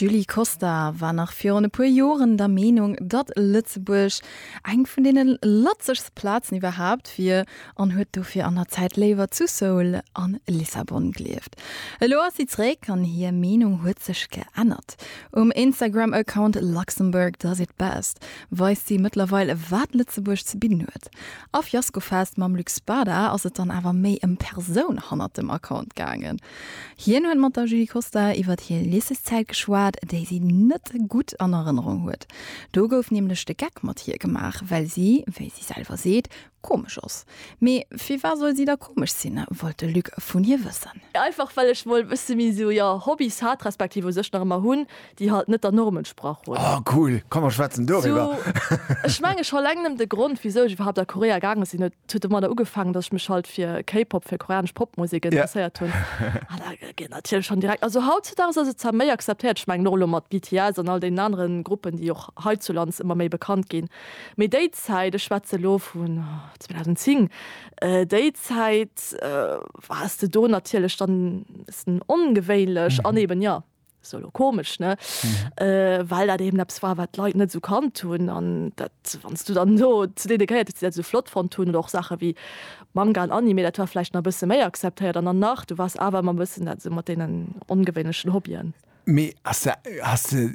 D'Julie Costa war nach virun e puer Joren der Meenung, datt Lëtzebuerg eng vun deene latzegst Plazen iwwerhaapt wier an huet dofir an der Zäit léiwer zu Seoul a Lissabon gelieft. Elo ass si zeréck an hir Meenung huet sech geännert. Um Instagram-Account Luxembourg does it best weist si mëttlerweil, wat Lëtzebuerg ze bidden huet. A Fiasco Fest mam Luc Spada ass et dann awer méi ëm d'Persoun hannert dem Account gaangen. Hien huet mat der Julie Costa iwwert hir Lycéeszäit geschwat, déi si net gutt an Erënnerung huet. Do gouf nämlech de Geck mat hir gemaach, well si, wéi si selwer seet, komesch ass. Mee firwat soll si da komesch sinn, wollt de Luc vun hir wëssen. Einfach well ech mol e bësse méi esou, jo, Hobbys hat, respektiv u sech nach ëmmer hunn, déi halt net der Norm entsprach hunn. Oh cool, komm mer schwätzen doriwwer. Ech mengen scho eleng nëmmen de Grond wisou ech iwwerhaapt a Korea gaange sinn, et huet domadder ugefaangen, dass ech mech halt fir K-Pop, fir koreanesch Popmusek interesséiert hunn an da gëtt een natierlech schonn direkt, also hautzedaags ass et zwar méi acceptéiert, ech mengen och elo mat BTS an all deenen anere Gruppen, déi och heizulands ëmmer méi bekannt ginn, mee déi Zäit, ech schwätze elo vun 2010, déi Zäit war s de do natierlech dann e bëssen ongewéinlech an eben, jo. solo komisch ne äh, weil dat eben abs war wat leit net so kann tun an dat wannst du dann so zu de geiert so flott von tun doch sache wie manga an anime dat war vielleicht na bisse méi akzeptiert an dann nach du was aber man bisssen dat so mat denen ungewöhnlichen hobbyen me as hast du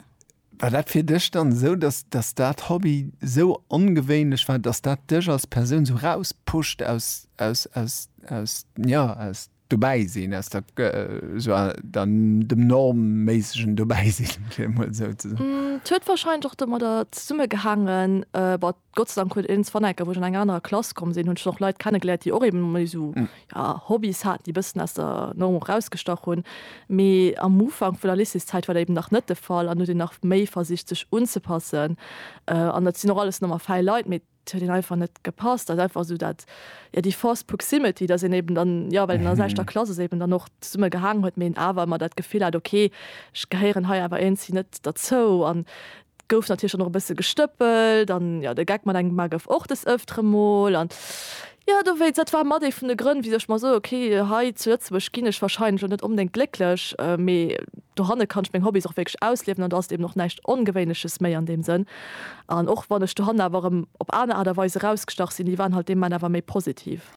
war dat fir dech dann so dass dass dat hobby so ungewöhnlich war dass dat dech als person so rauspuscht aus aus aus aus ja aus Dobäisinn ass dat esou an dem normméissegen Dobäisinn, fir emol esou ze soen. Et huet warscheinlech och domadder zesummegehaangen, bah, Gott sei Dank huet een es Wannecker, wou ech an eng anerer Klass komm sinn, hunn ech och Leit kennegeléiert, déi och ebe méi esou, jo, Hobbys haten, déi e bëssen aus der Norm och erausgestach hunn. Mee am Ufank vun der Lycéeszäit war dat eben nach net de Fall an huet een nach méi versicht, sech unzepassen. An dat sinn och alles normal fäi Leit, mee Et huet een einfach net gepasst, dat einfach esou dat, jo, déi forced proximity, dass een eben dann, jo, well een an der selwechter Klass ass, eben dann och zesumme gehaangen huet, mee een awer ëmmer dat Gefill hat, ok, ech gehéieren hei awer iergendswéi net derzou. An et gouf natierlech dann och e bësse gestëppelt an, jo, de Geck mat engem Mann gouf och des Ëftere mol an. Jo, dowéinst, dat war mat ee vun de Grënn, wéi ech mer soe, ok, hei zu Lëtzebuerg ginn ech wahrscheinlech och net onbedéngt glécklech, mee dohanne kann ech meng Hobbys och wierklech ausliewen an do ass et eben och näischt Ongewéinleches méi an deem Sënn. An och wann ech dohannen awer erëm op aner Aart a Weis erausgestach sinn, déi waren halt dee Moment awer méi positiv.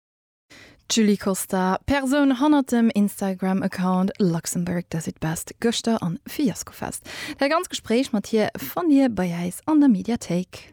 D'Julie Costa, Persoun hannert dem Instagram-Account Luxembourg does it best, gëschter an Fiaskofest. Dat ganzt Gespréich mat hir fannt Dir bei äis an der Mediathéik.